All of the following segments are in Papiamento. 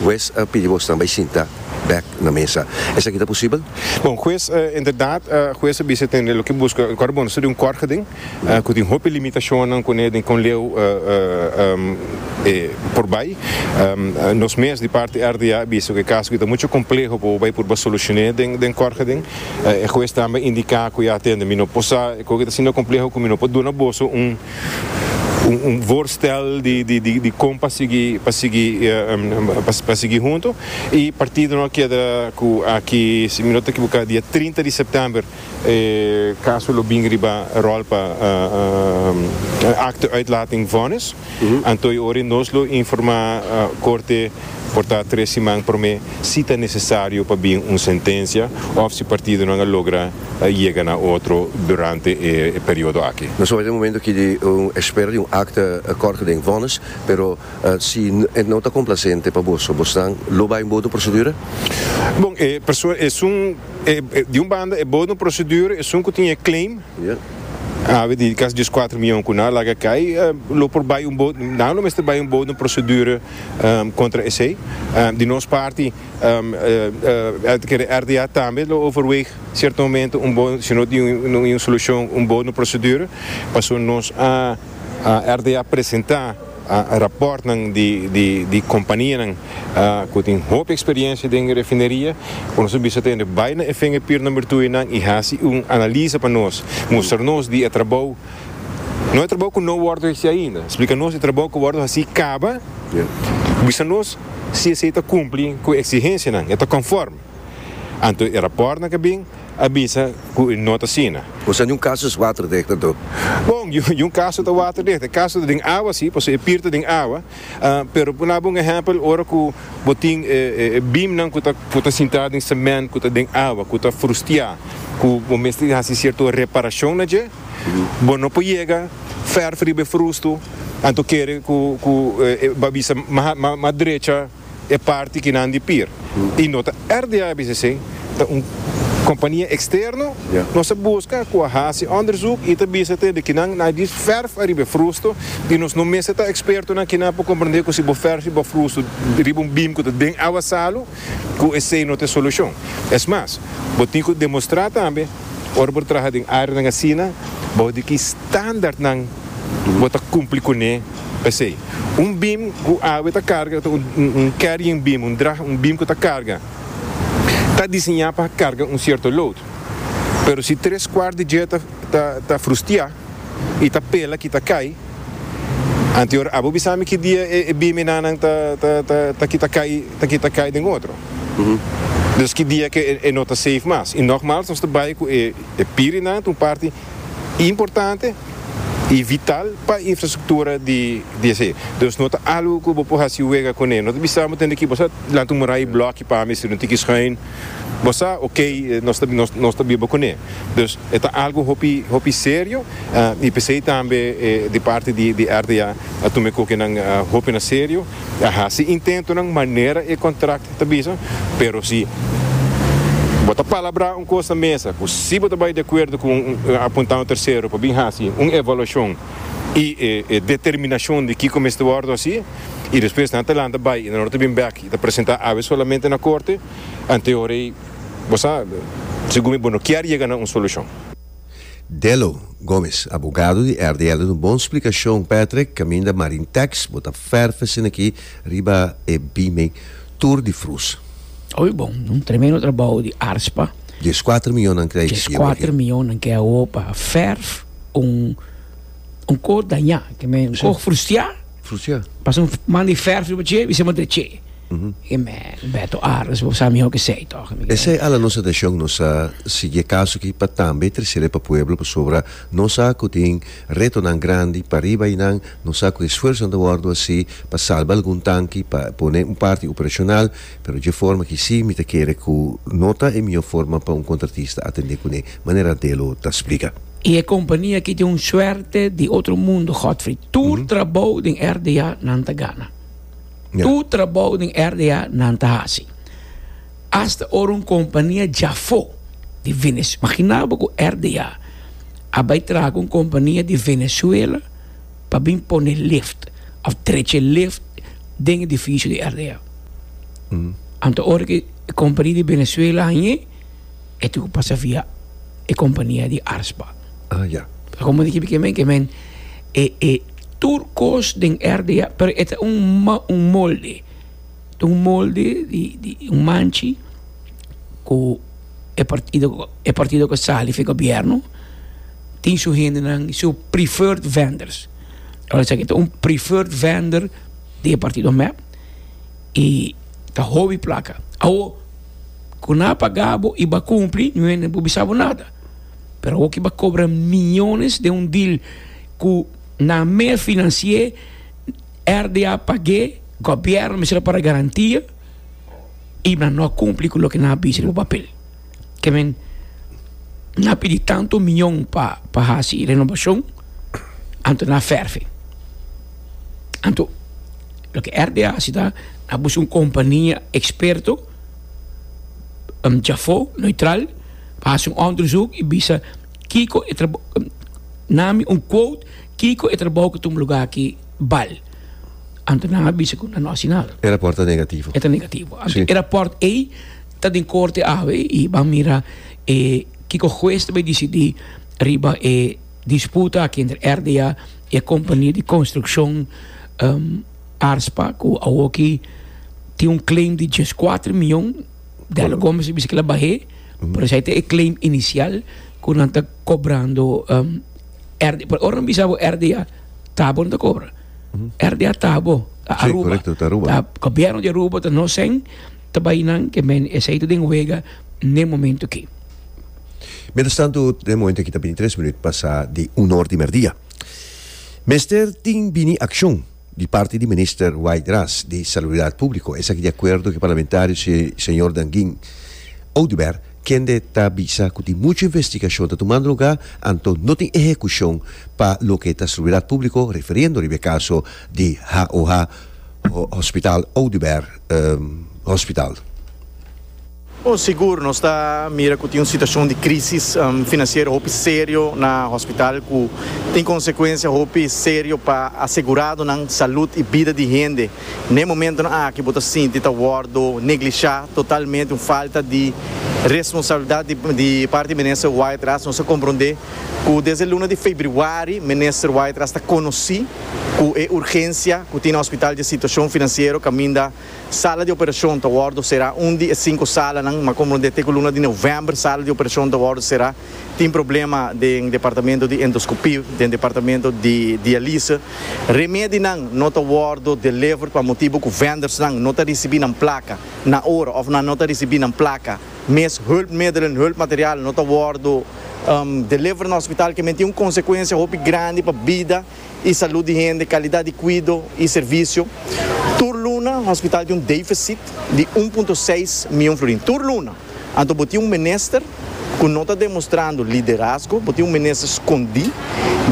Hues a pidi bo stanbai sinta bek na mesa. Esaki ta posibel? Bon, hues a inderdat hues a bisa tende lo ke buska. Kòrda bo, no ta di un kòrga den ku tin hopi limitashonnan kuné den kon leu e por bai. Nos mes di parti RDA a bisa ku e kaso aki ta muchu kompleho pa bo bai purba solushoné den kòrga den. E hues tambe a indiká ku ya tende mi no por sa e kòrga aki ta sinda kompleho ku mi no por duna boso un un voorstel di kon pa sigui pa sigui pa sigui hunto y partido no a keda cu aki si mi no ta ekiboka dia trinta di september e caso lo bin riba rol pa acte uitlating vonnis anto y ora nos lo informa corte por ta tres siman prome si ta necesario pa bin un sentencia of si partidonan a logra yega na otro durante e periodo aki. Nos oja e momento aki di un espera di un akta kòrke den vònis, pero si e no ta komplasente pa boso, bosnan lo bai bodo prosedura? Bon, e persoa esun, di un banda e bodo prosedura, esun ku tin e claim, abi di kas dies kuater mion ku nan a laga kai, lo por bai un bodo, nan lo mester bai un bodo prosedura kontra esei. Di nos parti. RDA tambe lo overweeg cierto momento un bon si no tin un solucion un bon procedure pasobra nos a RDA presenta raportnan di companianan cu tin hopi experiencia den refineria cu nos a bisa tende bay na efengepier number two y nan y haci un analisa pa nos mustra nos di e trabao No e trabou ku no wòrdu hesí ainda. Splika nos e trabou ku wòrdu hasí kaba i bisa nos si esei ta kumpli ku e eksigensianan, e ta konfòrm. Anto e rapòrtnan ke bin a bisa ku e no ta asina. Kusé di un kaso es waterdicht, a Dub? Bon, di un kaso ta waterdicht. E kaso ta den awa sí, pasobra e pir ta den awa. Pero por daba un ehèmpel, ora ku bo tin e bimnan ku ta ku ta sintá den semènt ku ta den awa, ku ta frustiá, ku bo mester hasi sierto reparashon na dje, Bo no por yega ferf riba e frustu, anto kere ku e bo a bisa mas drecha e parti ki nan di pir. I no ta RDA a bisa esei, ta un kompania eksterno nos a buska ku a hasi onderzoek i ta bisa te di kinan na di ferf ariba e frustu i nos no mester ta ekspertonan kinan por komprende ku si bo ferf riba bo frustu riba un bim ku ta den awa salu ku esei no ta e solushon. Es mas, bo tin ku demostrá tambe. Ora bo ta traha den áreanan asina, bou di ki standaardnan bo ta kumpli kuné p'esei. Un bim ku awe ta karga ta un carrying beam, un drag, un bim ku ta karga, ta diseñá pa karga un sierto load. Pero si tres kuart di dje ta frustiá, y ta pela kita cay, antior abo bisami ki dia e bimi nanan ta ta ta kita cay ta kita cay den otro, dus ki dia ke e no ta safe mas, y nogmals nos ta bay cu e e piri nan ta un parti importante y vital pa infrastructura di di esey, dus no ta algo cu bo por haci wega cune, no ta bisa bo tende ki bo sa lanta un muray bloki pami si no tin ki schuin. Bo sa ok nos ta biba kuné dus e ta algu hopi hopi serio i pesei tambe di parti di RDA a tuma e kokenan hopi na serio a hasi intentonan manera e kontrakt ta bisa pero si bo ta palabrá un kos na mesa ku si bo ta bai di akuerdo ku un apuntá un tersero pa bin hasi un evaluashon i e determinashon di kiko mester wòrdu hasi i despues nan ta lanta bai i nan ta bin bèk. Bo ta presenta awe solamente na korte, antehoray bo sa segun mi bo no kier yega na un solushon. Delo Gomes, abogado di RDL un bon splikashon Patrick, kaminda Marintex bo ta ferfe sinakí riba e bime tur di frus. Oy bon, un tremendo trabou di Arspa. Dieskuater mionnan ke a yega. Dieskuater mionnan ke a opa ferf un. un koj dañá, ke men un koj frustiá, Frustiá. pasa un man di fèrf riba dje i sema dre dje. E men, Beto Ares, bo sa mihó kesei tòg. Esei ala nos atashon, nos a sigui e kaso aki pa tambe trese re pa pueblo, pasobra nos sa ku tin retonan grandi pariba einan, nos sa ku esfuersonan ta wòrdu hasi pa salba algun tanki, pa pone un parti operashonal. Pero dje forma ki sí mi ta kere ku no ta e mihó forma pa un kontratista atendé kuné, manera Delo ta splika. I e kompania ki tin un suerte di otro mundo, Godfrey. Tur trabou den RDA nan ta gana. Tur trabou den RDA nan ta hasi. Asta ora un kompania djafó di Venez, maginá bo ku RDA a bai traha ku un kompania di Venezuela pa bin pone lift òf trechi lift den edifisio di RDA. Anto ora ki e kompani di Venezuela hañ'é, e tin ku pasa via e kompania di Arsba. Ah, ya. Pasobra komo mi kibi ke men, ke men e, e tur kos den RDA, pero e ta un ma, un molde. Ta un molde di, di un manchi ku e partido, e partido ku a sali for e gobièrnu tin su hendenan, su preferred vendors. Ora esaki ta un preferred vendor di e partido mep y ta hobi placa awo cu na pagabo y ba cumpli no hende no por bisabo nada pero awo ki ba cobra millones den un deal cu na me financia RDA page gobierno mester a para garantia y nan no a cumpli cu loke nan a bisa den un papel. ke men na pidi tantu miñon pa pa hasi renobashon anto na fèrfi. Anto loke RD a hasi ta a buska un kompania eksperto djafó neutral pa hasi un òndersuk i bisa kiko e nami un quote kiko e trabou ku ta un lugá akí bal. Anto nan a bisa ku nan no hasi nada. E rapòrt ta negativo. E ta negativo. Anto e rapòrt ei. Ta den corte awe y ban mira kiko huez ta bay dicidi riba e disputa aki entre RDA y e compania di construccion ARSPA cu awoki tin un claim di dies cuatro mion. Della Gomez ta bisa que la bahe pero esai ta e claim inicial cu nan ta cobrando RDA pero ora nan bisa bo RDA ta bo nan ta cobra RDA ta bo ta Aruba ta gobierno di Aruba ta nosen. Ta bai nan ke men esei ta den wega n'e momento aki. Mientras tanto, den momento aki ta bini tres minuut pasa di un or di merdia. Mester tin bini accion di parti di Minister Wayde Ras di Salubridad Publico, esaki di acuerdo cu parlamentario Señor Dangin Oduber, kende ta bisa cu tin mucho investigacion ta tumando lugar, anto no tin ehecucion pa loke ta Salubridad Publico, refiriendo riba e caso di HOH. Hospital Oduber Hospital. Bon, sigur nos ta mira cu tin un situacion di crisis financiero hopi serio na hospital cu tin consecuencia hopi serio pa aseguradonan salud y bida di hende. N'e momentonan aki bo ta sinti ta wordo neglisha totalmente, un falta di responsabilidad di parti di Minister Wyatt Ras. Nos a comprende. cu desde luna di febriuari Minister White a sta conoci cu e urgencia cu tin na hospital dje situacion financiero caminda sala di operacion ta wordo cera. Un di e cinco salanan, ma comprende te cu luna di november sala di operacion ta wordo cera, tin problema den departamento di endoscopy, den departamento di dialyse. Remedinan no ta wordo deliver pa motibo cu vendors nan no ta ricibi nan placa na ora of nan no ta ricibi nan placa. Mes hulpmiddelen, hulpmaterial, no ta wòrdu deliver na hospital ke men tin un konsekuensia hopi grandi pa bida i salut di hende, kalidat di kuido i servisio. Tur luna hospital tin un defisit di un punto seis mion florin, tur luna. Anto bo tin un minister ku no ta demostrando liderazgo, bo tin un minister skondí.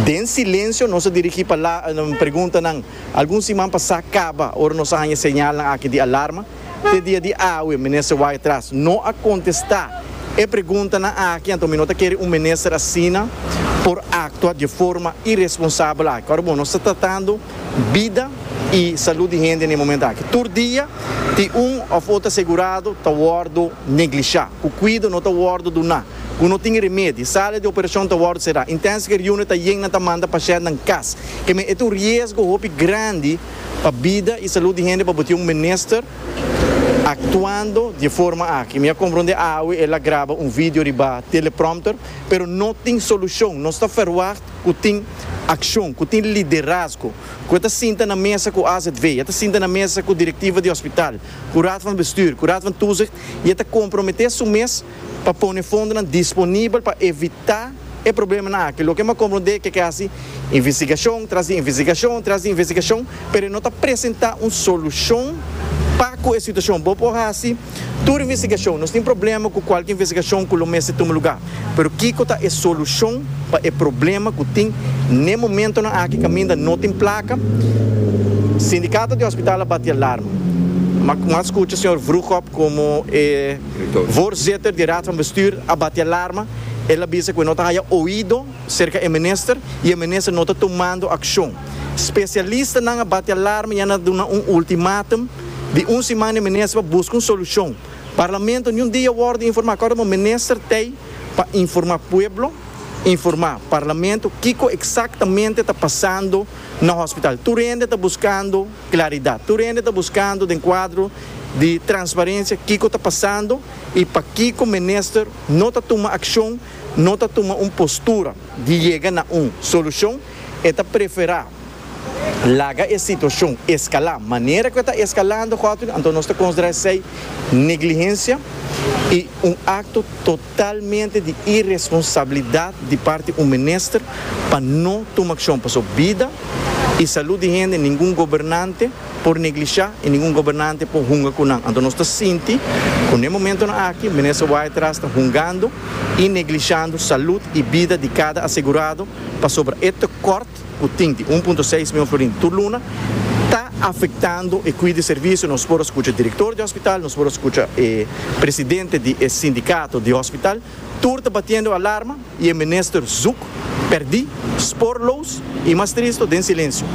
Den silensio nos a dirigí preguntanan algun siman pasá kaba ora nos a haña señalnan aki di alarma. te dia di awe Minister Wyctras no a contesta e preguntanan aki, anto mi no ta kere un Minister asina por actua di forma irresponsabel aki. Ora bon, nos ta tratando bida y salud di hende n'e momento aki. Tur dia tin un of otro asegurado ta wordo neglisha, cu cuido no ta wordo duna, cu no tin remedi, sala di operacion ta wordo cera, intensive care unit ta yen nan ta manda pacientnan cas. Keme e ta un riesgo hopi grandi. pa bida y salud di hende pa bo tin un minister actuando di e forma aki. Mi a compronde awe el a graba un video riba teleprompter pero no tin solucion. Nos ta verwacht cu tin accion, cu tin liderazgo, cu e ta sinta na mesa cu azv, e ta sinta na mesa cu directiva di hospital, cu raad van bestuur, cu raad van toezicht y e ta compromete su mes. pa pone fondonan disponibel pa evitá e problemanan aki. Loke m'ha komprondé ke ke hasi investigashon tras di investigashon tras di investigashon, pero e no ta presentá un solushon pa ku e situashon. Bo por hasi tur investigashon, nos tin problema ku kualke investigashon ku lo mester tuma lugá, pero kiko ta e solushon pa e problema ku tin n'e momentonan aki kaminda no tin plaka? Sindikato di Hospital a bati alarma. M'ha m'ha skucha señor Vroegop komo e. Voorzitter di Raad van Bestuur a bati alarma, el a bisa ku e no ta haya oido serka e minister i e minister no ta tumando akshon. Spesialistanan a bati alarma i a na duna un ultimátum di un siman na e minister pa buska un solushon. Parlamento niun dia a wòrdu informá kòrda minister t'ei pa informá pueblo, informá parlamento kiko eksaktamente ta pasando na hòspital. Tur hende ta buskando. Klaridat. Tur hende ta buskando den kuadro di transparensia kiko ta pasando i pakiko minister no ta tuma akshon, no ta tuma un postura di yega na un solushon. E ta preferá laga e situashon eskalá manera ku e ta eskalando gotoina. Anto nos ta konsiderá esei neglihensia i un akto. Totalmente di iresponsabilidat di parti un minister pa no tuma akshon paso bida i salud di hende ningun gobernante por neglishá i ningun gobernante por hunga ku nan. Anto nos ta sinti ku n'e momentonan aki Minister Waaitraas ta hungando i neglishando salud i bida di kada asegurado pasobra e tekòrt Art. Cu tin di un punto seis mion florin tur luna ta afectando e cui di servicio. Nos por a scucha e director di e hospital, nos por a scucha e presidente di e sindicato di hospital, tur ta batiendo alarma y e minister zoek perdi, spoorloos y mas tristo den silencio.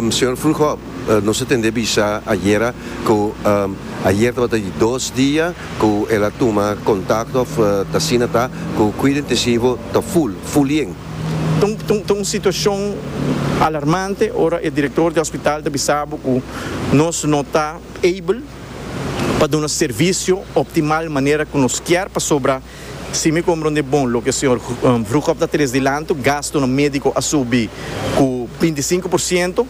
Señor Vroegop, nos a tende bisa ayera cu ayer tabata di dos dia cu el a tuma contacto of ta asina ta cu cuida intensivo ta full, fullien. Ta un situacion alarmante ora e director di hospital ta bisa bo cu nos no ta able pa duna servicio optimal manera cu nos kier pasobra si mi comprende bon loke señor Vroegop ta tres dilantu gastunan medico a subi cu binti sinku por ciento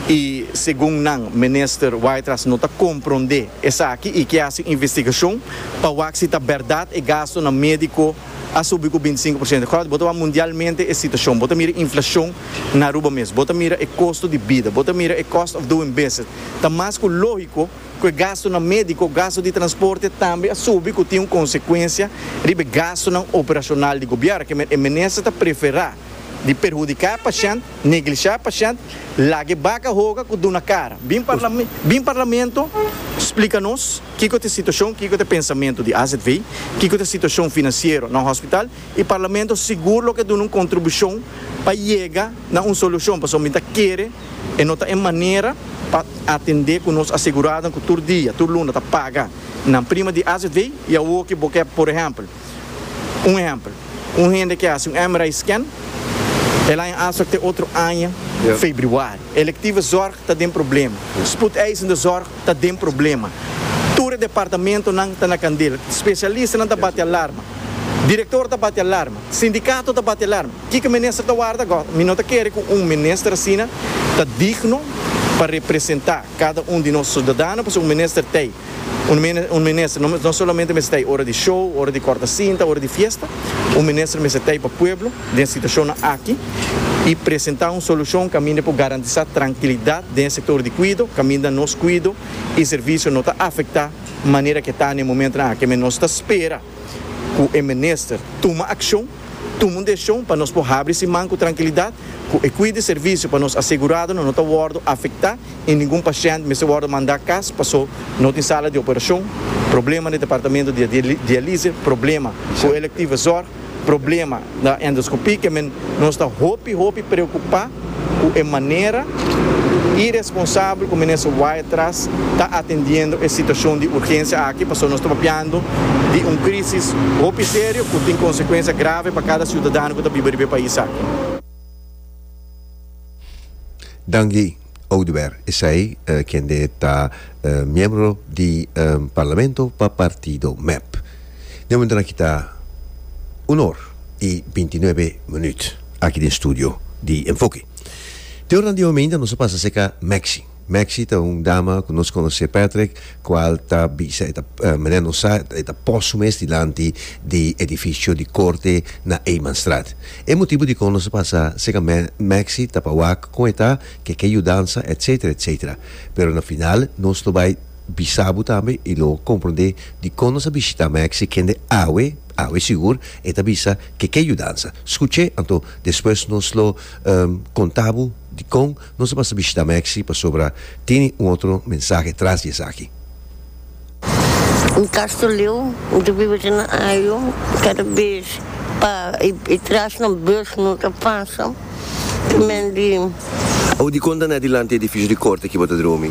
y segun nan Minister Wytras no ta comprende esaki y kier haci un investigacion pa wak si ta berdad e gastunan medico a subi cu binti sinku por ciento. Cort, bo ta wak mundialmente e situacion. Bo ta mira e inflacion na Aruba mes. Bo ta mira e costo di bida. Bo ta mira e cost of doing business. Ta mas cu logico cu e gastonan medico, gasto di transporte tambe a subi cu tin un consecuencia riba e gastonan operacional di gobier. E Minister ta prefera. di perhudiká pashènt, neglishá pashènt, lag'é baka hoga ku duna kara. Bin bin parlamento splika nos kiko ta e situashon, kiko ta e pensamentu di AZV, kiko ta e situashon finansiero na hospital i parlamento sigur lo ke duna un kontribushon pa yega na un solushon pasobra mi ta kere e no ta e manera pa atendé ku nos aseguradonan ku tur dia, tur luna ta paga nan prima di AZV i awo ke bo ke por ehèmpel. Un ehempel, un hende ke hasi un MRI scan, el a en astok te otro aña febriuari. Elektiva zòrg ta den problema. Spoedeisende zòrg ta den problema. Tur e departamentonan ta na kandel. Spesialistanan ta bati alarma. Direktor ta bati alarma. Sindikato ta bati alarma. Kiko minister ta warda gò? Mi no ta kere ku un minister asina ta digno pa representá. Kada un di nos sudadano por ser un minister t'ei un minister. No solamente mester t'ei ora di show, ora di kòrta sinta, ora di fiesta. Un minister mester t'ei pa pueblo den situashonnan aki i presentá un solushon kaminda por garantisá trankilidat den e sektor di kuido, kaminda nos kuido i servisio no ta afektá manera ku e ta na e momentunan aki. Nos ta spera. cu e minister tuma accion, tuma un decision pa nos por habri siman cu trankilidat, cu e cui di servicio pa nos aseguradonan no ta wordo afecta y ningun pashent mester wordo manda cas paso no tin sala di operacion, problema na e departamento di dialise, problema cu e electiva zorg, problema. Na endoscopie ke men nos ta hopi hopi preocupa cu e manera iresponsabel cu Minister Wyethras ta atendiendo e situacion di urgencia aki pasobra nos ta papiando di un crisis hopi serio cu tin consecuencia grave pa cada ciudadano cu ta biba riba e pais aki. Danki. Oduber, esai kende ta miembro di Parlamento pa partido mep. Di momento na kita un or i binti nuebe minuut aki den studio di Enfoke. Te oranan di hominda nos a pasa cerca Maxi. Maxi ta un dama cu nos conoce Patrick. cual ta bisa e ta manera nos sa e ta pos su mes dilanti di edificio di corte na Eymanstraat. E motibo dicon nos a pasa seca Maxi ta pa wak con e ta ke ke yudansa etc. Etc. Pero na final nos lo bay bisa bo tambe y lo compronde dicon nos a bishita Maxi kende awe awe sigur e ta bisa ke ke yudansa. Scuche anto despues nos lo conta bo dicon Nos a pasa bishita Maxi pasobra tene un otro mensahe tras di esaki. Castro Leo mi ta biba den Ohio cada bes pa e trash nan bus no ta pasa te men di. Audi konta na dilanti e edificio di corte aki bo ta dromi.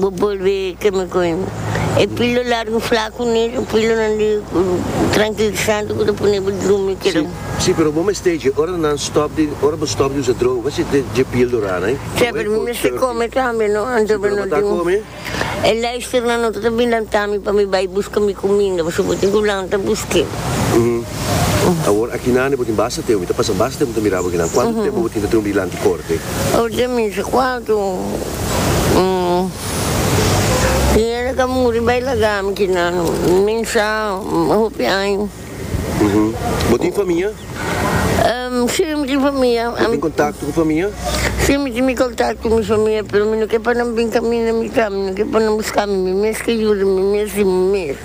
Bo bolbe ke mi koe e pilo largu flaku ni e pilonan di trankilisante ku ta pone bo drumi keda un. Si, pero bo mester dje ora nan stòp di ora bo stòp di usa droga bo mester dje pil dura nai. Sèn, pero mi mester kome tambe no anto mi no tin e luisternan no ta ta bilanta mi pa mi bai buska mi kuminda pasobra bo tin ku lanta busk'e. Awor akinane bo tin basta tempu, mi ta pasa basta tempu ta mira bo akinan. Kuantu tempu bo tin ta trunbi dilanti korte? Awor den misa kuartu, Pineda a ka muri bai laga mi kinan, nin sa hopi aña. Bo tin famia? Si, mi tin famia. Bo tin kontakto ku famia? Si, mi tin mi kontakto ku mi famia, pero mi no ke pa nan bin kaminda mi ka, mi no ke pa nan buska mi, mi mes ke yuda mi mes di mi mes.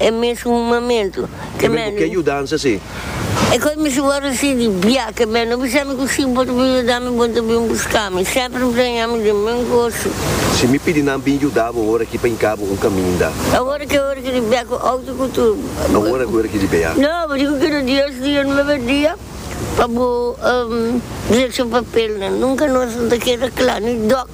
E mesun momento ke men. Ku ke yudansa si? E kos mi suba resi di bia ke men no bisa mi ku si bo ta bin yuda mi bo ta bin buska mi semper mpreña mi den men goso. Si mi pidi nan bin yuda bo ora ki pa hinka bo un kaminda. Awor ke ora ki di bia ku auto ku tur. Awor ke ora ki di bia. No bo diku ke no Dios di un mebe dia pa bo direkshon papelnan nunka nos no ta keda kla ni dok.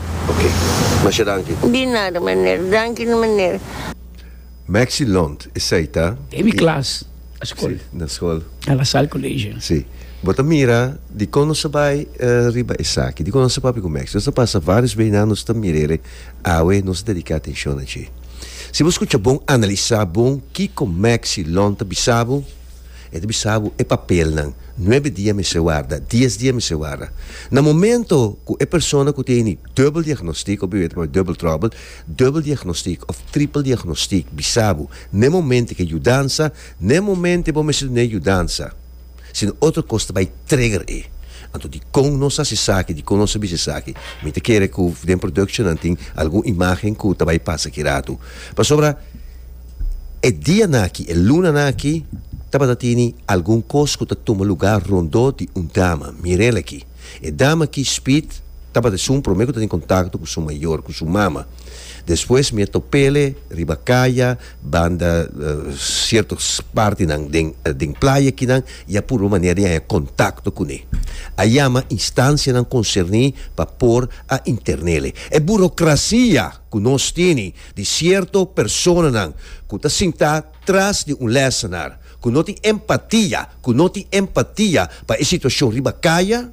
Ok. Masha danki. Di nada maner. Danki na maner. Maxi Lont esei ta. Den mi klas na skol. Si, na skol. Na La Salle College. Si. Bo ta mira dikon nos a bai riba esaki. Dikon nos a papia ku Maxi. Nos a pasa vários bes nan nos ta mira el. Awe nos a dediká atenshon na dje. Si bo skucha bon, analisá bon kiko Maxi Lont a bisa bo. E ta bisa bo, E papelnan, nuebe dia mester warda, dies dia mester warda. Na momento ku e persona ku teni dubbel diagnostik, of e weta p'e dubbel trouble, dubbel diagnostik of triple diagnostik bisa bo, na e momento ke yudansa, na e momento bo mester duna e yudansa. Si no otro kos ta bai trigger e. Anto dikon nos hasi esaki, dikon nos a bisa esaki? Mi ta kere ku den productionnan tin algun imagen ku ta bai pasa kirato. Pasobra E dianan aki, e lunanan aki, tabata tini algun kos ku ta tuma lugá rondó di un dama. Mir'el aki. E dama aki, Speed, tabata esun promé ku ta tin kontakto ku su mayor, ku su mama. Despues mi a top'el riba kaya, banda sierto partinan den, den playa akinan, i a purba manera di haña kontakto kuné. A yama instansianan konserní pa por a intern'el. E burokrasia! ku nos tini di sierto personanan ku ta sintá tras di un lèsenar, ku no tin empatia, ku no tin empatia pa e situashon riba kaya,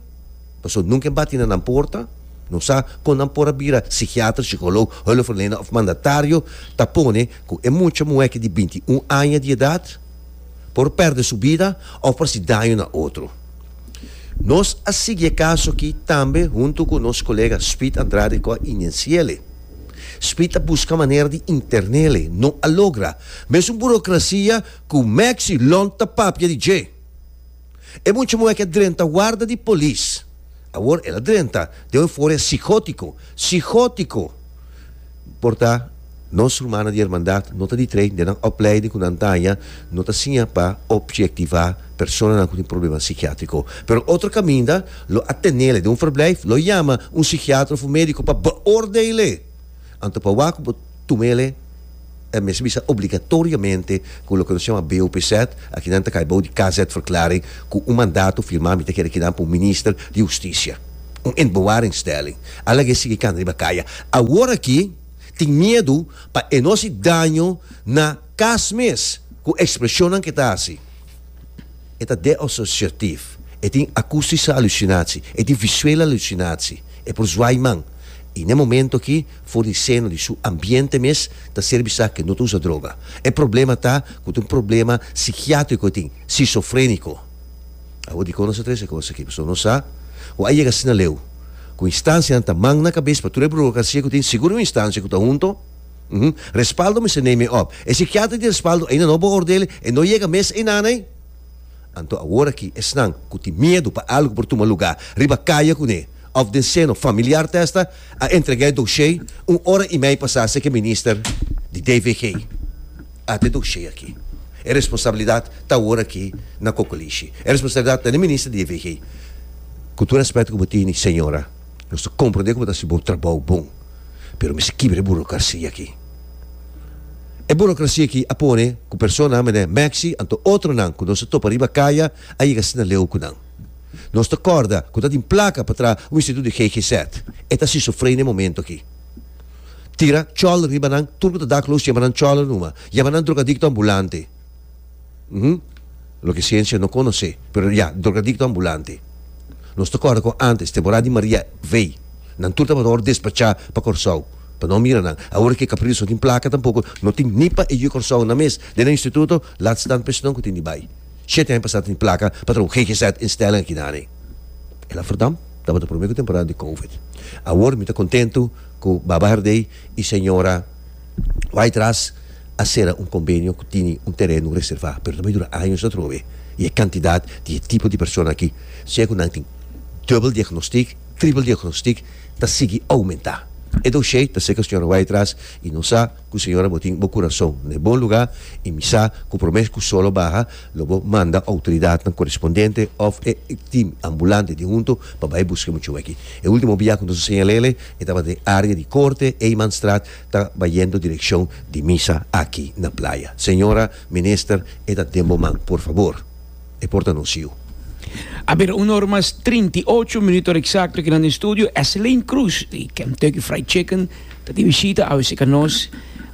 pasobra nunka e bati na nan porta, no sa kon nan por a bira sikiater, sikolog, hùlefverlener òf mandatario, ta pone ku e mucha muhèke di binti un aña di edat por pèrdè su bida òf por hasi daño na otro. Nos a sigui e kaso aki tambe huntu ku nos kolega Speed Andrade ku a inencia'le. Speed a buska manera di interna'le, no a logra. Mesun burokrasia ku Maxi Lont ta papia di dje. E mucha muhé aki a drenta warda di polis. Awor el a drenta den un eufória sigótiko. Sigótiko! Por ta, nos rumannan di Hermandad no ta ditrei den nan opleiding ku nan ta haña, no ta siña pa opjektivá personanan ku tin problema sikiátriko. Pero otro kaminda lo a tenel'e den un verblijf, lo yama un sikiater òf un médiko pa beoordeel'e, anto pa wak bo tum'el'e. el mester bisa obligatoriamente cu loke nos shama BOPZ, aki nan ta cay bao di KZ-verklaring cu un mandato firma mita kere kinan pa un minister di husticia. Un inbewaringstelling. A laga e sigui cana riba caya. Awor aki tin miedu pa e no haci daño na cas mes cu expresionnan cu e ta haci. E ta deassociatief. E tin acustische hallucinatie. E tin visuele hallucinatie. E por zwai man. Y n'e momento aki. fornisendo di su ambiente mes ta serbi sa ke no ta usa droga. E problema ta ku ta un problema sikiatriko e tin, sisofreniko. Awor dikon nos a trese e kos aki? Pasobra nos sa ku a yega asina leu, ku instansianan ta man na kabes pa tur e burokrasia ku tin sigur un instansia ku ta hunto. Hm, respaldo mester neme òp. E sikiatra di respaldo ainda no beoordele, e no yega mes einan ei. Anto awor aki esnan ku tin miedu pa algu por tuma lugá riba kaya kuné, Of den seno familiar ta esta a entrega e doshé un ora i mei pasá seki minister di DVG. Ata e doshé aki. E responsabilidat ta awor aki na Cocolishi. E responsabilidat ta den minister di DVG. Ku tur respeto ku bo tini señora, nos ta komprondé ku bo ta hasi bo trabou bon, pero mester kibra e burokrasia aki. E burokrasia aki a pone ku personanan mene Maxi anto otronan ku nos a topa riba kaya a yega asina leu ku nan. Nos ta kòrda ku ta tin plaka pa traha un instituto di GGZ. E ta sisofrenia momento aki. Tira chòlder riba nan, tur ku ta dakloos chema nan chòlder numa. Yama nan drogadikto ambulante. Hm, loke siensia no konosé, pero ya, drogadikto ambulante. Nos ta kòrda ku ántes, temporada di Maria vei, nan tur tabata wòrdu despachá pa Kòrsou, pa no mira nan. Awor ke Capriles no tin plaka tampoko, no tin ni pa e yu Kòrsounan mes den nan instituto, laat staan pa esnan ku tin di bai. Shete hende pasá ta tin plaka pa traha un GGZ instelling aki nan ei. El a verdam, tabata promé ku temporada di covid. Awor mi ta kontentu ku Baba Herdey i señora Waidras a sera un kombenio ku tini un tereno reservá, pero ta bay dura años atrobe i e kantidat di e tipo di persona aki, sea ku nan tin dubbel diagnostik, trippel diagnostik, ta sigui oumentá. E doshé ta ser ku señora Waidras i nos a. Ku Señor bo tin bo kurason na e bon lugá i mi sa ku promé ku solo baha lo bo manda outoridatnan korespondente òf e tim ambulante di huntu pa bai buska e muchón akí. E último bia ku nos a señal'ele e tabata den área di Korte, Eymanstraat, ta bayendo direkshon di misa aki na playa. Señora Minister e ta den bo man, por fabor e por ta nos yu. A bira un or mas trinta i ocho minuto eksakto aki na no estudio, Esseline Croes di Kentucky Fried Chicken. Ta tin bishita awe si ka nos,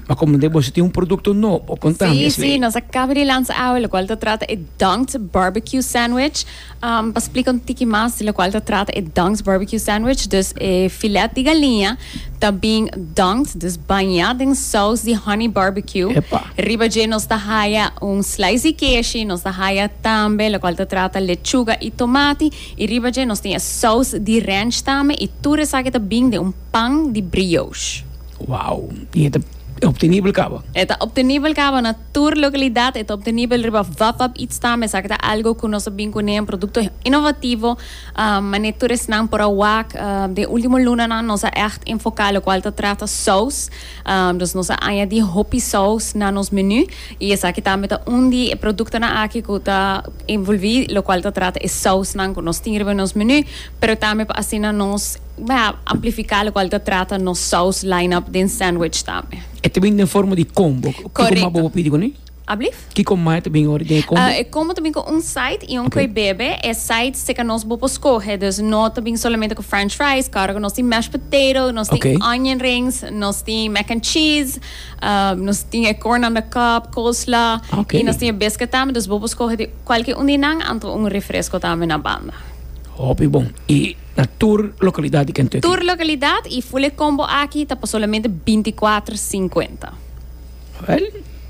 ma komo den boso tin un produkto no, por konta mi esei. Si, si, nos a kaba di lansa awe lokual ta trata e Dunked Barbecue Sandwich. Pa splika un tiki mas di lokual ta trata e Dunked Barbecue Sandwich, dus e filèt di galiña ta bin dunked, dus bañá den sous di honey barbecue. Epa! Riba dje nos ta haya un slice di keshi, nos ta haya tambe lokual ta trata lechuga i tomati, i riba dje nos tin e sous di ranch tambe, i tur esaki ta bin den un. pan di brioche. Wow! I e ta optenibel caba? E ta optenibel caba na tur localidad. E ta optenibel riba Vapap Eats tambe. Esaki ta algo cu nos a bin cu ne, un producto innovativo. Mane tur esnan por a wak. Den e ultimo lunanan nos a echt enfoca locual ta trata saus. Dus nos a añadi hopi saus na nos menu. I esaki tambe ta un di e productonan aki cu ta envolvi locual ta trata e sausnan cu nos tin riba nos menu. Pero tambe pa asina nos. M'a amplifiká lokual ta trata nos sous line-up den sandwich tambe. E ta bin den forma di combo. Kiko mas bo por pidi kuné? Ablief? Kiko mas e ta bin ora den e combo? E combo ta bin ku un side i un kue bebe. E side se ka nos bo por skohe. Dus no ta bin solamente ku french fries, karu ku nos tin mashed potato, nos tin onion rings, nos tin mac and cheese, nos tin e corn on the cob, coleslaw, i nos tin e biscuit tambe. Dus bo por skohe di kualke un di nan anto un refresco tambe na banda. Hopi bon. I. Na tur lokalidat di Kentucky. Tur lokalidat y full e combo aki ta pa solamente binti kuater sinkuenta. Well,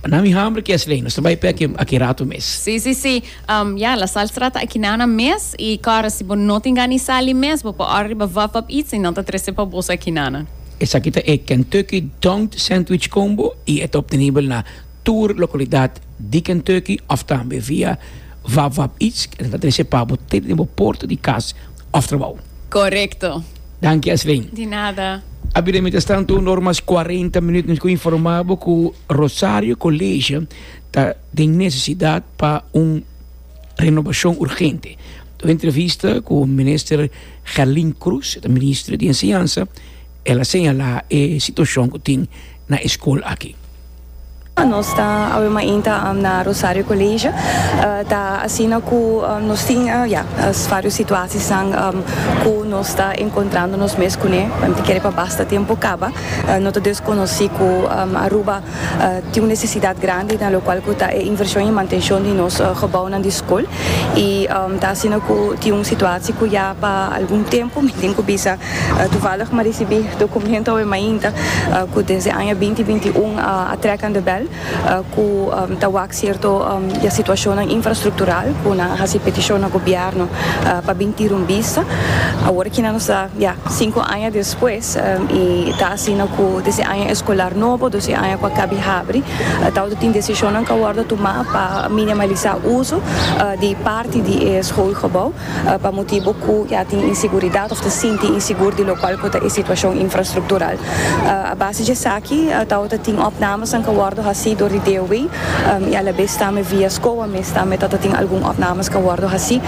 nan mi hamber ki es lei. Nos ta bay p'e aki, aki rato mes. Sí, sí, sí. Um, ya, La Sal Strata aki nana mes y kòrda si bo no tin gani sal di mes, bo por òrda riba Vap Vap Eats y nan ta trese pa boso aki nana. Esaki ta e Kentucky Dunked Sandwich Combo y e ta obtenibel na. tur localidad di Kentucky of tambe via WapWapItsk ta trece pa bo te den bo porta di cas of trabao. Correcto. Danki Ashley. Di nada. A bira mientras tanto un or mas cuarenta minuut nos cu informa bo cu Rosario College ta den necesidad pa un renovacion urgente. Un entrevista cu Minister Gelin Cruz, e ta Ministro di Enseñansa, el a señala e situacion cu tin na e school aki. Nos ta awe mainta na Rosario Colegio. Ta asina cu nos tin, ya, varios situaciasnan cu nos ta encontrando nos mes cune. Mente kere pa basta tempo caba. No ta desconoci cu Aruba tin un necesidad grandi na locual cu ta e inversion y mantencion di nos gebounan di scol. Y ta asina cu tin un situacia cu ya pa algun tempo mi tin cu bisa Toevallig m'a risibí dokumento awe mainta ku den se aña binti binti un a trèk an debèl ku ta wak sierto di a situashonnan infrastruktural ku nan a hasi petishon na gobièrnu pa bin tira un bista. Awor aki nan nos ta ya sinku aña despues i ta asina ku den se aña eskolar nobo dus i aña ku a kabi habri tabata tin desishonnan ku a wòrdu tumá pa minimalisá uso di parti di e skoolgebou. pa motibu cu ya tin inseguridad of ta sinti insegur di locual cu ta e situacion infrastructural. A base dje esaki tawata ta tin opnamesnan ca wordo haci door di DOE y alabes tambe via scoa mes tambe tawata tin algun opnames ca wordo haci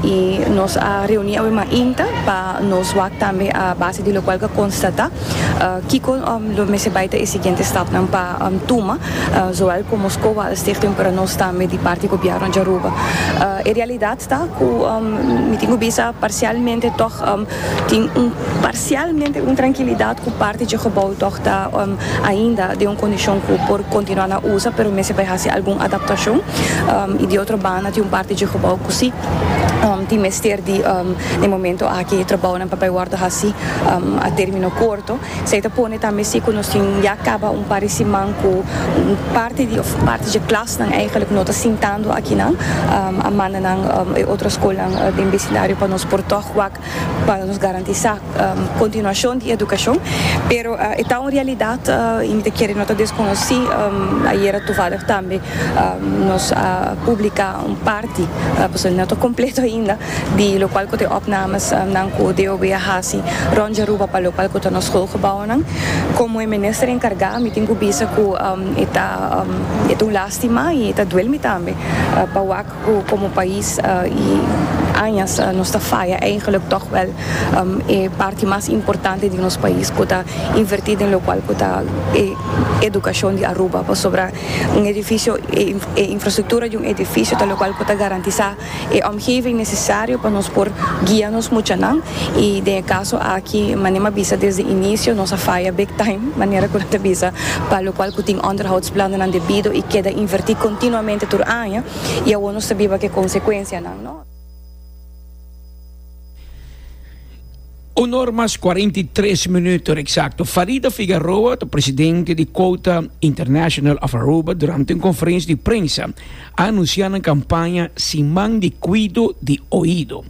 y nos a reuni awe mainta pa nos wak tambe a base di locual ca constata. Kiko lo mester bai ta e siguiente stapnan pa tuma, zowel komo Skowalenstichting pero nos tambe di parti gobièrnu di Aruba? E realidat ta ku mi tin ku bisa parsialmente tòg tin un parsialmente un trankilidat ku parti dje gebou tòg ta ainda den un kondishon ku por kontinuá na usa pero mester bai hasi algun adaptashon i di otro banda tin un parti dje gebou ku si tin mester di den momento aki trabounan pa bai wòrdu hasi. a termino corto, esei ta pone tambe si cu nos tin ya caba un par di siman cu un parti di, of parti dje klasnan eigenlijk no ta sintando akinan, a manda nan e otro scolnan den becindario pa nos por tog wak pa nos garantisa continuacion di educacion, pero e ta un realidad y mi ta kere no ta desconoci, ayera tovallig tambe nos a publica un parti, pasobra no ta completo ainda. di lokual ku ta e opnames nan ku DOB a hasi rònt di Aruba pa lokual ku ta nos skolgebounan. Komo e minister enkargá mi tin ku bisa ku e ta e ta un lástima i e ta duel mi tambe pa wak ku komo pais i añas nos ta faya eigenlik tòg wèl e parti mas importante di nos pais ku ta invertí den lokual ku ta e edukashon di Aruba pasobra un edifisio e infrastruktura di un edifisio ta lokual ku ta garantisá e omgeving nesesario pa nos por guia nos muchanan i den e kaso aki manera mi a bisa desde inisio nos a faya big time manera ku nan ta bisa pa lokual ku tin onderhoudsplannen debido i keda inverti kontinuamente tur aña i awor nos ta biba ku e konsekuensianan. Un or mas cuarenta y tres minuto exacto, Farida Figaroa ta presidente di Quota International of Aruba durante un conferencia di prensa a anuncia nan campaña Siman di Cuido di Oido.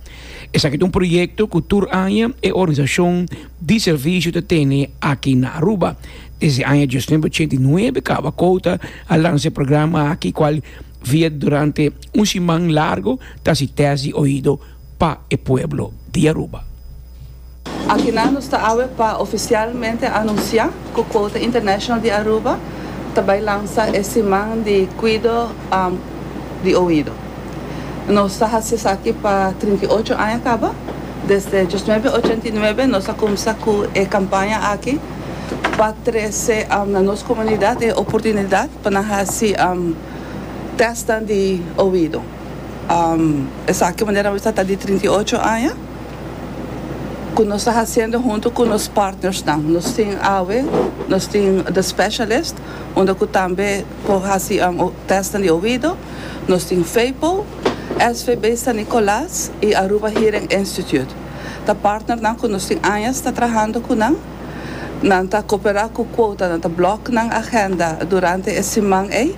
Esaki ta un proyecto cu tur aña e organizacion di servicio ta tene aki na Aruba. Desde aña diosnumber ochenta y nuebe caba Quota a lansa e programa aki cual via durante un siman largo ta haci test di oido pa e pueblo di Aruba. Akinan nos ta awe pa ofisialmente anunsiá ku Quota International di Aruba ta bai lansa e siman di kuido di oido. Nos ta hasi esaki pa trinta i ocho aña kaba. Desde dies nuebe ochenta i nuebe nos a kumsa ku e kampaña aki pa trese na nos komunidat e oportunidat pa nan hasi tèstnan di oido. esaki manera awes ta ta di trinta i ocho aña ku nos ta hasiendo huntu ku nos partnersnan. Nos tin awe, nos tin The Specialist unda ku tambe por hasi tèstnan di oido, nos tin Fepo, SVB San Nicolas i Aruba Hearing Institute. Ta partnernan ku nos tin añas ta trahando ku nan. Nan ta koperá ku kuotanan, ta blòk nan agenda durante e siman ei.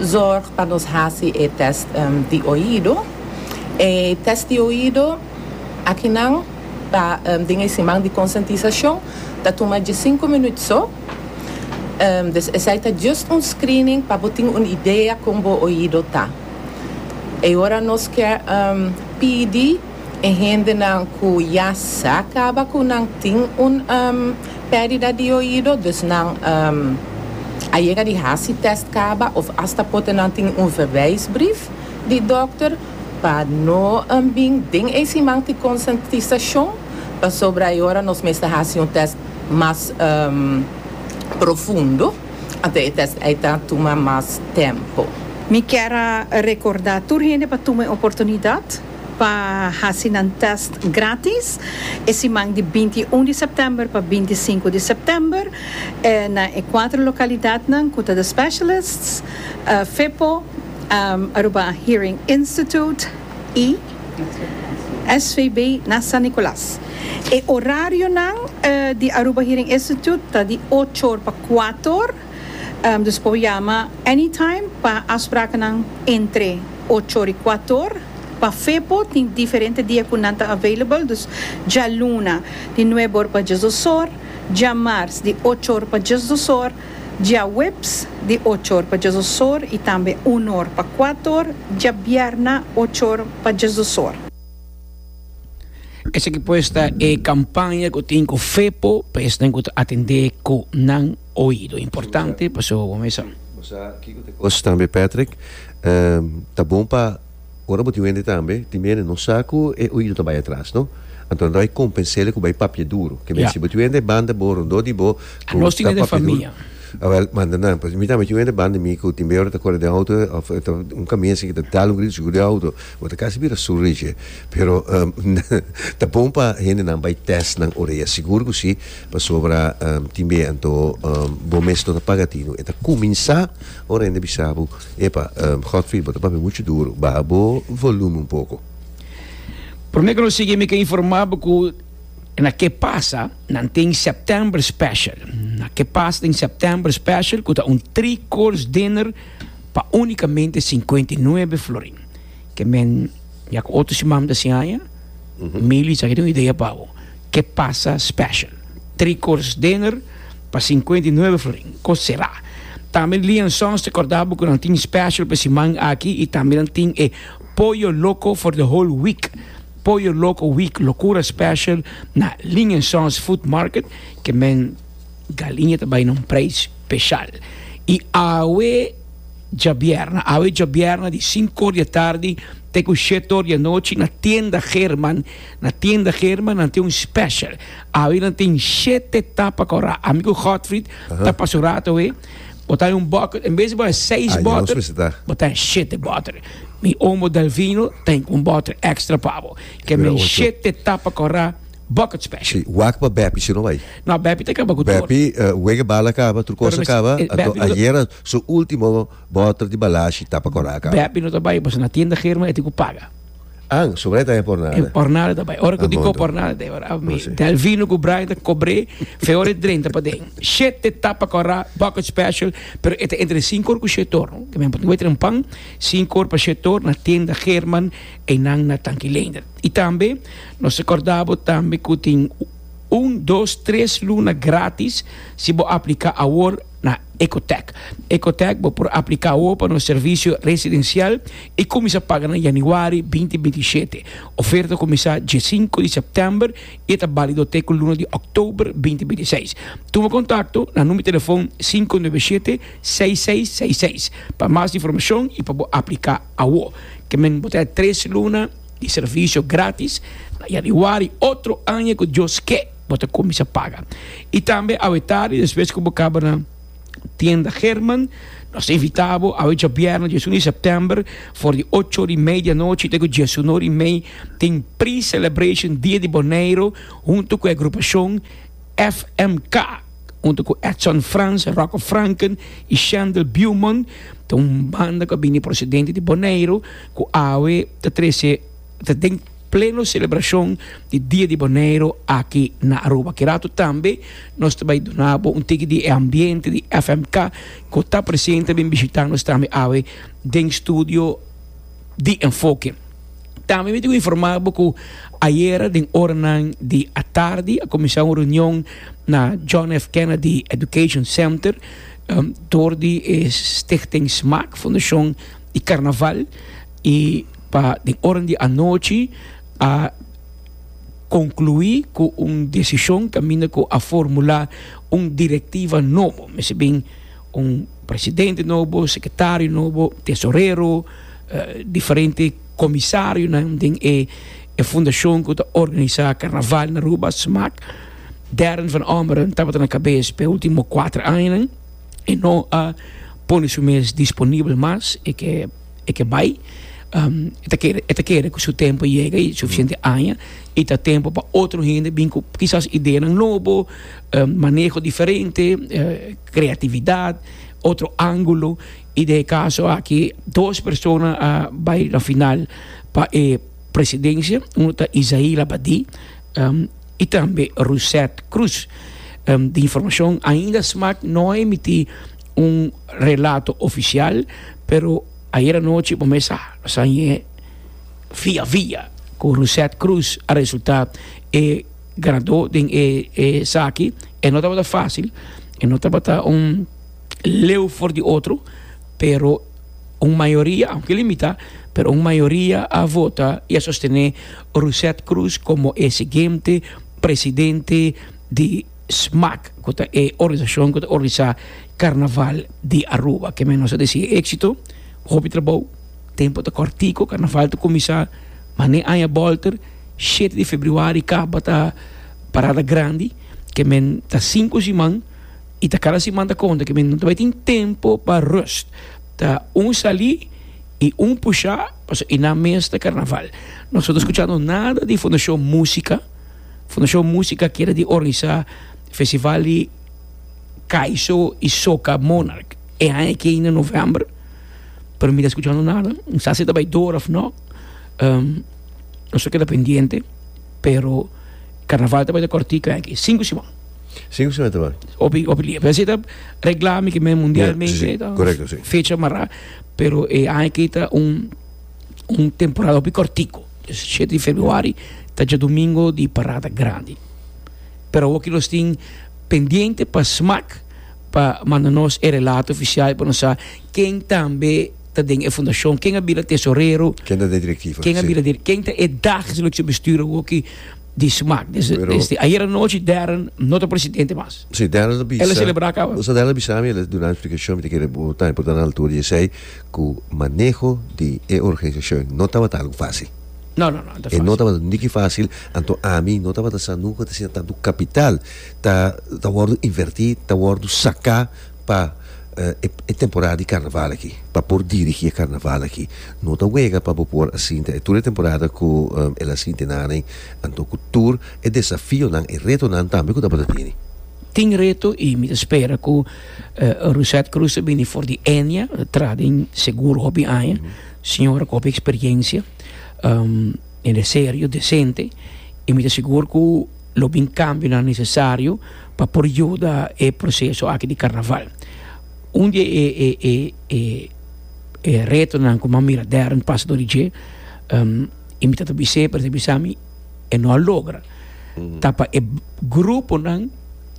zorg pa nos hasi e test di oido. E test di oido aki nan ta den e siman di konsientisashon, ta tuma diesinco minut so. Des esei ta just un screening pa bo tin un idea kon bo oido ta. E ora nos ke pidi. e hendenan ku ya sa kaba ku nan tin un perdida di oido, dus nan a yega di hasi test kaba of asta pote nan tin un verwijsbrief di dokter pa no bin den e siman tin konsientisashon pasobra e ora nos mester hasi un test mas profundo anto e test ei ta tuma mas tempo. Mi kier a rekorda tur hende pa tuma e oportunidat. pa hasi nan tèst grátis e siman di binti i un di sèptèmber pa binti i sinku di sèptèmber na e kuater lokalidatnan ku ta The Specialists, FEPO, Aruba Hearing Institute i SVB na San Nicolas. E orarionan di Aruba Hearing Institute ta di ocho or pa kuater. Dus por yama anytime pa afsprakennan entre ocho ri kuator. Pa Fepo tin diferente dia ku nan ta available, dus djaluna di nuebe or pa dies dos or, djamars di ocho or pa dies dos or, djaweps di ocho or pa dies dos or i tambe unu or pa kuatu or, djabierna ocho or pa dies dos or. Esaki pues ta e kampaña ku tin ku Fepo pa esnan ku ta atendé ku nan. Oido importante pasobra bo mester. Bo sa kiko ta e kos tambe Patrick, ta bon pa ora bo tin wende tambe, tin bianen no sa ku e oido ta bai atras no, anto anto hay kompensele ku bai papia duru, ke men si bo tin wende e banda bo rondó di bo ku ta papia duru, awel manda nan pues mi tambe tin wende banda mi ku tin bianen ora ta kore den outo of un kamiense ke ta dal un grito sigur den outo. Bo ta casi bira surdo dje. Pero ta bon pa hendenan bay test nan orea. Sigur cu si, pasobra tin bee anto bo mes no ta paga tino. E ta cuminsa ora hende bisa bo, epa, Godfrey bo ta papia mucho duro, baha bo volume un poco. Prome cu no sigui mi ke informa bo cu na ke pasa nan tin September special. Na ke pasa tin September special cu ta un three course dinner pa unicamente cincuenta y nuebe florin. ke men ya ku otro siman ta sin haña, Mili sa ke tin un idea pa bo. Ke pasa special. Tri course dinner pa sinkuenta i nuebe florin, ko será. Tambe Lee and Sons ta kòrda bo ku nan tin special pa e siman aki i tambe nan tin e Pollo Loco for the whole week. Pollo Loco week, lokura special na Lee and Sons Food Market ke men galiña ta bai na un preis special. I awe. djabierna, awe djabierna di sinku or di atardi te ku shet or di anochi na Tienda German. Na Tienda German nan tin un special. Awe nan tin shete tapa kora. Ami ku Godfried ta pasa un rato awe. Bo ta haña un bòter, en bes di bo haña seis bòter, bo ta haña shete bòter. Mi omo Delvino ta haña un bòter extra pa bo. Ke men shete tapa kora. Bucket special. Si, wak pa Beppy si no bai. No, Beppy ta kaba ku tur. Beppy wega bala kaba, tur kosa kaba, anto ayera su ultimo boter di balashi ta pa Kòrsou kaba. Beppy no ta bai pasobra na tienda German e tin ku paga. An, so mane ta e por nada. E por nada ta bai. Ora ku dikó por nada ta e ora. Mi Delvino ku Brian ta kobr'é feor e drenta paden. Shete ta pa Kòrsou, bucket special, pero e ta entre sinku or ku shete or. Por ehempel, tin wetering pan, sinku or pa shete or na tienda German einan na Tanki Leender. I tambe. Nos ta corda bo tambe cu tin un, dos, tres luna gratis si bo aplica awor na Ecotec. Ecotec bo por aplica awor pa nos servicio residencial y cuminsa paga na Januari binti binti shete. Oferta cuminsa diescinco di september y e ta balido te cu luna di oktober binti binti seis. Tuma contacto na number telefon sinku nuebe shete, seis seis seis seis pa mas informacion y pa bo aplica awor. Ke men bo ta e tres luna. di servisio gratis na yanuari otro aña ku Dios ke bo ta kuminsá paga. I tambe awe tardi despues ku bo kaba na Tienda German nos ta invitá bo awe djabièrnè dies un di sèptèmber for di ocho ora i mei di anochi te ku dies un ora i mei tin pre-celebration dia di Boneiru huntu ku e grupashon FMK huntu ku Edson Frans, Rocko Franken i Shendel Beaumont ta un banda ku a bini prosedente di Boneiru. Ku awe ta trese ta den pleno selebrashon di Dia di Boneiru aki na Aruba. Kirato tambe nos ta bai duna bo un tiki di e ambiente di FMK ku ta presente bin bishita nos tambe awe den studio di Enfoke. Tambe mi tin ku informa bo ku ayera den oranan di atardi a kuminsá un reunion na John F. Kennedy Education Center, dor di e Stichting Smaak Fundashon. di carnaval y pa den oran di anochi a conclui cu un decision caminda cu a formula un directiva nobo, mester bin un presidente nobo, secretario nobo, tesorero, diferente comisarionan den e fundacion cu ta organisa carnaval na Aruba, smaak, Darren van Ommeren tabata na cabes pa e ultimo cuater añanan. e no a pone su mes disponibel mas, e ke e ke bai. Um, e ta kere e ta kere ku su tempo yega i sufisiente aña i ta tempo pa otro hende bin ku kisas ideanan nobo, um, maneho diferente, uh, kreatividat, otro angulo. I den e kaso aki dos persona a bai na final pa e presidensia. Uno ta Isaí Labadie, um. y tambe Russet Cruz. Di informacion ainda smaak no a emiti un relato oficial, pero ayer anochi bo mes sa lo sa ñe via via cu Russet Cruz a resulta e ganador den e esaki, e no tabata facil, e no tabata un. leu for di otro pero un mayoria aunke limita pero un mayoria a vota y a sostene Rousset Croes como e siguiente presidente di smac cu ta e organisacion cu ta organisa carnaval di Aruba ke men nos a desi exito hopi trabou tempo ta cortico carnaval ta cuminsa mane aña bolter shete di febriuari caba ta parada grandi ke men ta cinco siman I ta kada siman ta konta ke mi no ta bai tin tempu pa rust. Ta un sali i un pushá pasobra i nan mes ta karnaval. Nos no ta skuchando nada di Fundashon Músika. Fundashon Músika kere di organisá festival di Kaiso i Soca Monarch e aña ke ainda novèmber, pero mi ta skuchando nada. Mi sa si ta bai dor òf nò. Nos a keda pendiente, pero karnaval ta bai ta kòrtiku aña ke, sinku siman. Sí, ku semana ta bai. Hopi, hopi lia. Pero si ta regla mi ki men mundialmente, sí, sí. ta Correcto, sí. fecha mará, pero e eh, aña ki ta un, un temporada hopi cortico. Dus 7 di februari ta dje domingo di parada grandi. Pero awor ki nos tin pendiente pa SMAC pa manda nos e relato oficial pa nos sa ken tambe ta den e fundacion, ken a bira tesorero, Ken ta de directiva? ken a sí. bira dir, ken ta e dag selección bestuur awor ki di smak desde ayer anochi Darren no ta presidente mas el a celebra caba. Busa Darren a bisa mi el a duna explikashon mi ta kere bo ta importante na altura di esey ku maneho di e organizashon no tabata algu facil no no no ta facil e no tabata niki facil anto ami no tabata sa nunka ta siña tantu capital ta wordu inverti ta wordu saka pa e temporada di karnaval aki pa por dirigi e karnaval aki no ta wega pa bo por a sinti tur e temporada ku el a sinti nada anto ku tur e desafionan e retonan tambe ku tabata tini. Tin reto i mi ta spera ku Rusette Cruz ta bini for di Enia tra den segur hopi aña señora ku hopi eksperiencia hende serio desente i mi ta sigur ku. Lo bin cambionan necesario pa por yuda e proceso aki di carnaval. Un di e retonan cu mi a mira Darren pasa dor di dje, y mi ta ta bis'e, pero e ta bisa mi, e no a logra. Ta pa e gruponan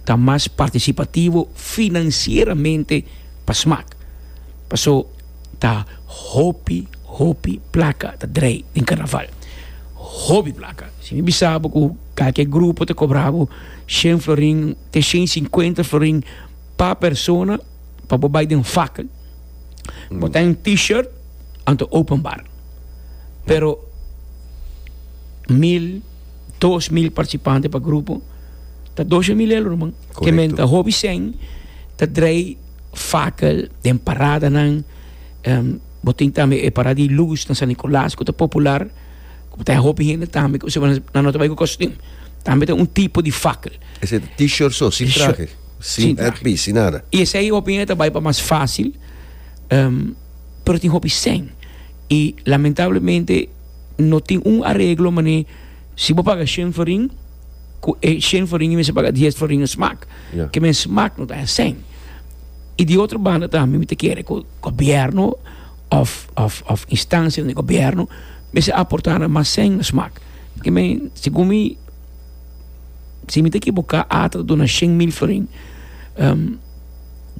ta mas participativo financieramente pa smaak. Paso. ta hopi hopi plaka ta drai den karnaval hopi plaka si mi bisa bo ku kalke grupo ta kobra bo shen florin te shen i sinkuenta florin pa persona pa bo bai den fakel bo ta den t-shirt anto open bar pero mil dos mil partisipante pa grupo ta doshe mil euro man ke men ta hopi shen ta drai. fakel den paradanan bo tin tambe e parada di lus na San Nicolas ku ta popular ku ta hopi hende tambe ku semana nan no ta bai ku kostum tambe ta un tipo di fakel Ese t-shirt so, sin trahe, sin headpiece, sin nada. i esei hopi hende ta bai pa mas fasil pero tin hopi sèn i lamentablemente no tin un areglo manera si bo paga shenfering ku e shen floriño mester paga dies floriño smak, yeah. ke men smak no ta heseng. I di otro banda tambe mi te kere ku gobierno of, of, of instancia di gobierno mester aportar na mas seng na smak. Ke men, segun mi, si mi te ekiboka, ata duna shen mil florin. Um,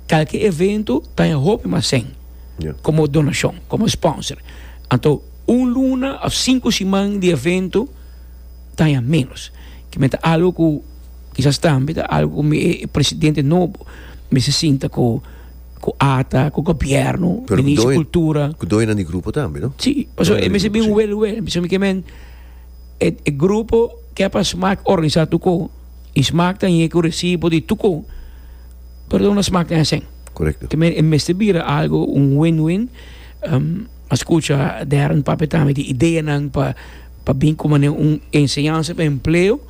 kalke evento ta e hopi mas seng. Yeah. Como donacion, como sponsor. Anto, un luna of cinco siman di evento taña menos ki me ta algo ku kisas tambe ta algo ku mi e presidente nobo mester sinta ku ku ata ku gobièrnu minister di kultura Ku doñonan di grupo tambe no? si pasobra e mester bin wel wel mi skemi ke men e grupo ke pa smak organisá tur kon i smak ta ñe ku resibo di tur kon pero dor na smak tin asen Korekto te men e mester bira algo un win win a skucha Darren papia tambe di ideanan pa. pa bin como ne un enseñanza pa empleo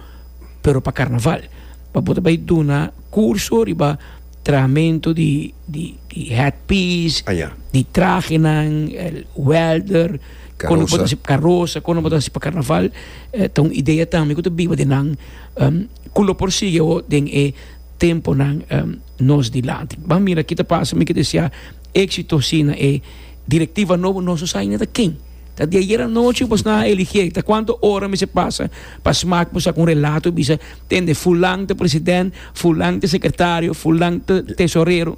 pero pa carnaval pa bo ta bay duna curso riba trahamento di di di head piece Aja. di trahenan el welder Carosa. bo ta hasi carosa con nan bo ta hasi pa carnaval eh, ta un idea tambe cu ta biba den nan em, cu lo por sigui awo den e temponan em, nos dilanti ban mira ki ta pasa mi ke deseá éxito si na e directiva nobo nos no sa ainda ta ken. Ta di ayer anochi bo sna a eligié, ta cuanto ora mester pasa pa smak bo sak un relato y bisa tende fulan ta president, fulan ta secretario, fulan ta tesorero.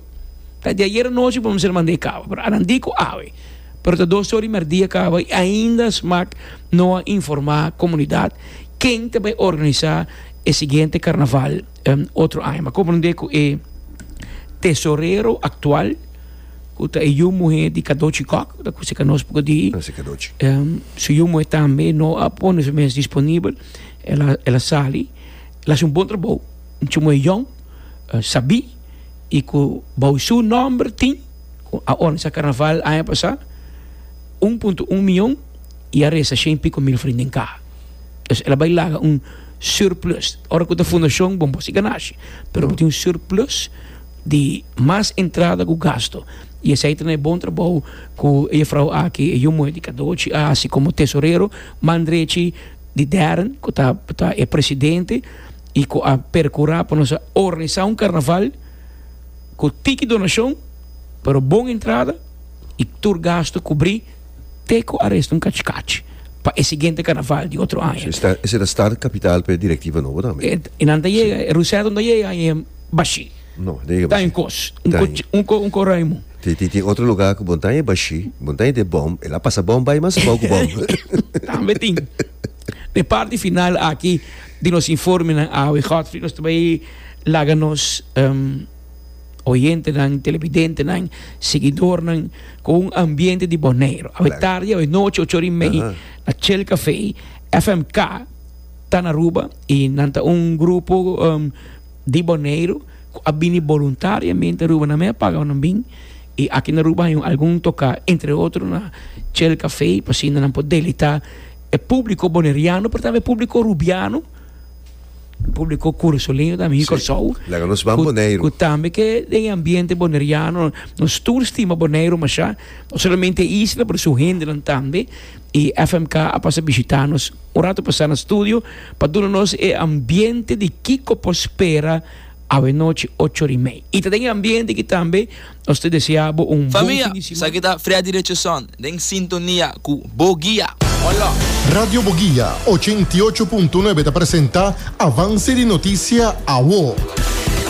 Ta di ayer anochi bo mester mandé caba, pero adan di cu awe, pero ta dos ora y merdia caba y ainda smak no a informa comunidad ken ta bay organisa e siguiente carnaval. Um otro aña. M'a comprende cu e tesorero actual, cu ta e yu muher di Cadochi Kok, ta cu seca nos poco di. Gracia Cadochi. Um, su yu muher tambe no a pone su mes disponibel. El a, el a sali. El haci un bon trabou. Un chuma muher yong, uh, sabí y cu bao su nomber tin, cu a organisa carnaval aña pasa, un punto un miyon y a resta shen y pico mil vrienden ca. Entonces el a bai laga un surplus. Ora cu ta fundacion bon por si ganashi, pero bo tin un surplus di mas entrada cu gasto. Y esey ta na e bon trabou cu e juffrouw aki, e yu moe di cadochi a haci como tesorero, man drechi di Darren cu ta e presidente y cu a percura pa nos a organisa un carnaval cu tiki donacion pero bon entrada y tur gasto cubri. te ku aresto un kachi kachi pa e siguiente karnaval di otro aña. Ese ta start kapital pa e direktiva nobo tambe. E nan ta yega, e Ruseto ta yega i e bashí ta un kos, un ko Raymond. Tin otro lugá ku bo ta e bashí, bo ta e den bòm, el a pasa bòm bai mas abou ku bòm. Tambe tin. Den parti final aki di nos informenan awe Godfrey nos ta bai laga nos. oyentenan, televidentenan, seguidornan ku un ambiente di Boneiru. Awe tardi, awe nochi, ocho ora i mei, na Chel Café, FMK ta na Aruba i nan ta un grupo um, di Boneiru ku a bini boluntariamente Aruba. Nan mi a paga pa nan bin i aki na Aruba hay un algun toka, entre otro na Chel Café, pa asina nan por delita e públiko boneiriano, pero tambe e públiko arubiano. publicó curso leño también sí. Corsou. Laga nos van Bonaire. Cu también que de ambiente boneriano, nos tour stima Bonaire masha, no solamente isla, pero su gente también. Y FMK a pasa visitanos un rato pasa na studio, pa duna nos e ambiente di Kiko Pospera, awe noche ocho rimei. Y ta den ambiente que también Nos ta desea bo un bon fin di siman. Familia, esaki ta Freddy Richardson den sintonia cu Bo Guia. Hola. Radio Bo Guia ochenta i ocho punto nuebe ta presenta Avance di Noticia Awo.